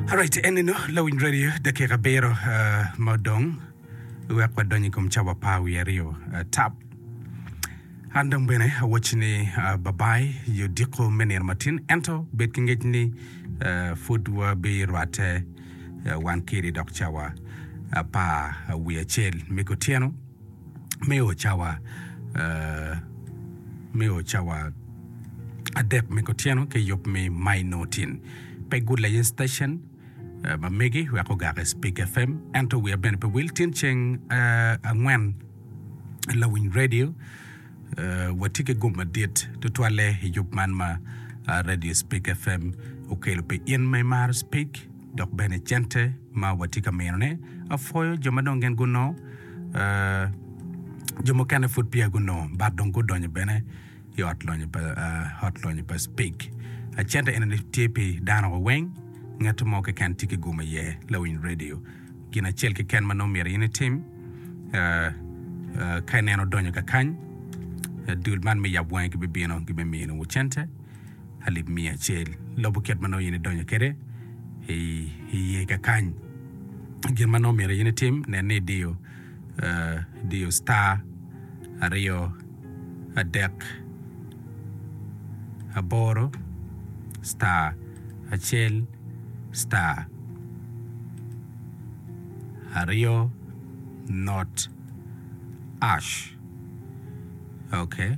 Alright, en eno lawiny radio dakika abiro ah, ma odong wek wadony i kom cawa apar wiye aryo ah, tap an dong bene awacci ni ah, babai yo diko me nino matin ento bed ki ngec ni ah, pud wabirwatte ah, wan kiri dok cawa apar wiye acel me kutyeno me o cawa me o cawa adek me kutyeno ki yub me Mainotin. Pe good layen station ma megi wek ogak i Speak FM ento wiya bene pe wil tin ceng angwen lawiny radio watye ki gum madit tutwalle i yub man ma radio Speak FM okelo pi in ma imaro Speak Dok bene cente ma watye ka minone, apwoyo jo ma dong gin gunongo, jo mukene pud peya gunongo but dong gudonyo bene i ot lonyo pa Speke. Cente eno ni tye pi dano wa weng, ngat mo keken tye ki gumo iye lawiny radio. Gin acel keken ma nongo myero in itim ka ineno odonyo kakany, dul man me yab wangi gibibino gibimiyo nwu cente. alip miya acel, lobo kit ma nongo in idonyo kwede i iye kakany. Gin ma nongo myero in itim, nen ni idiyo idiyo star aryo adek aboro star acel star aryo not ash ok.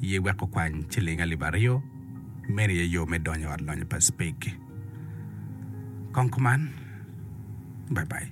iye wek okwany ciling alip aryo, meno aye yo me donyo ot lonyo pa Speke. Kong kuman. Bye bye.